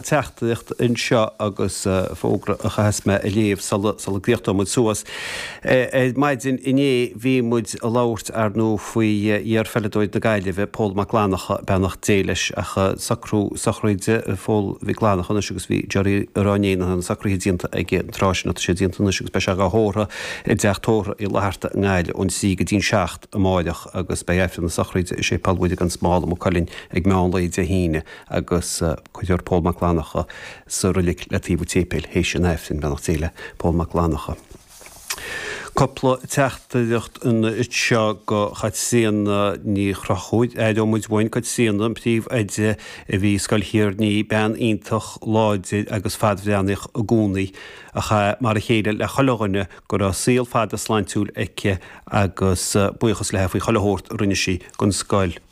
teachtaireacht anseo agus fógra a chaitheas mé a léamh sula gcríochnóidh muid suas. Ar maidin inné bhí muid ag labhairt, ar ndóigh, faoi iar-pheileadóir na Gaillimhe, Pól Mac Fhlannacha, beannacht Dé leis, ach socrú sochraide Phóil Mhic Fhlannacha anois agus bhí Gerry a rá inné nach raibh na socruithe déanta ag an tráth sin ach tá siad déanta anois agus beidh sé dhá thórramh i dTeach Tórraimh Uí Fhlatharta i nGaillimh ón trí go dtí'n seacht amáireach agus beidh Aifreann na sochraide i Séipéal Mhuire gan Smál i Maigh Cuilinn ag meán lae Dé hAoine agus cuirfear Pól Mac Fhlannacha sa roilig le taobh an tséipéil théis an aifrinn, Beannacht Dé le Pól Mac Fhlannacha. Cupla teachtaireacht anseo go Chaitríona Ní Chonchúir. Aireoidh muid uainn Caitríona, an príomh-oide a bhí i Scoil Thír an Fhia, bean iontach láidir agus fadbhreathnaíoch i gcónaí, a chaith mar a chéile le chuile dhuine go raibh saol fada sláintiúil aici agus buíochas leithe faoi chuile shórt a rinne sí don scoil.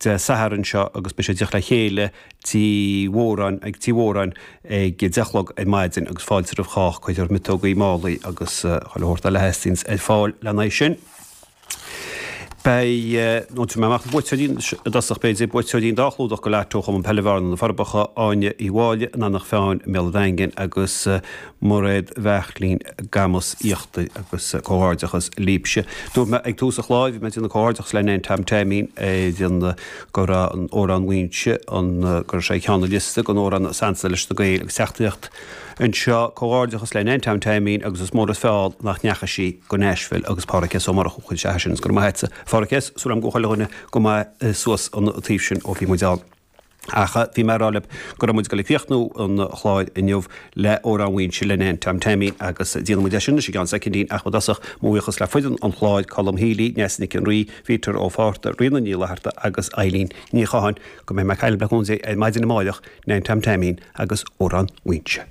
Dé Sathairn seo agus beidh siad ag teacht le chéile Tigh Mhóráin ag Tigh Mhóráin ag 10 a chlog ar maidin agus fáilte roimh chách. Cuirfear miotógaí, málaí agus chuile shórt eile a theastaíonn ar fáil le haghaidh sin. Beidh, nó tabharfaidh mé amach na buaiteoirí i dtosach b'fhéidir, buaiteoirí an dá chlúdach go Lotto, Cumann Peile Bhearna, Na Forbacha, Áine Uí Mháille, in Eanach Mheáin i mBéal an Daingin agus. Mairéad Bheachlín, Camus Íochtair agus comhghairdeachas libse. Dúirt mé ag tús an chláir, bhí mé ag déanamh comhghairdeachas le Nan Tom Teaimín ar an go raibh Amhrán Mhaínse an go raibh sé ar cheann an liosta den amhrán is ansa leis na Gaeil agus teachtaíocht anseo. Comhghairdeachas le Nan Tom Teaimín agus is mór an feall nach ndeachaigh sí go Nashville agus Pádraig S. Ó Murchú a chuir isteach é sin go raibh maith agatsa. Pádraig S. Súil agam go bhfuil chuile dhuine go maith suas an taobh sin ó bhí muid ann. Ach bhí mé ag rá libh go raibh muid ag dul ag críochnú an chláir inniu le Amhrán Mhaínse le Nan Tom Teaimín, agus déanfaidh muid é sin anois i gceann soicindín, ach i dtosach, mo bhuíochas le foireann an chláir, Colm Healy, Neasa Nic an Rí, Peter Ó Fátharta, Ríona Ní Fhlatharta agus Eileen Ní Chatháin. Go mbeidh mé ag caint libh le cúnamh Dé ar maidin amáireach, Nan Tom Teaimín agus Amhrán Mhaínse.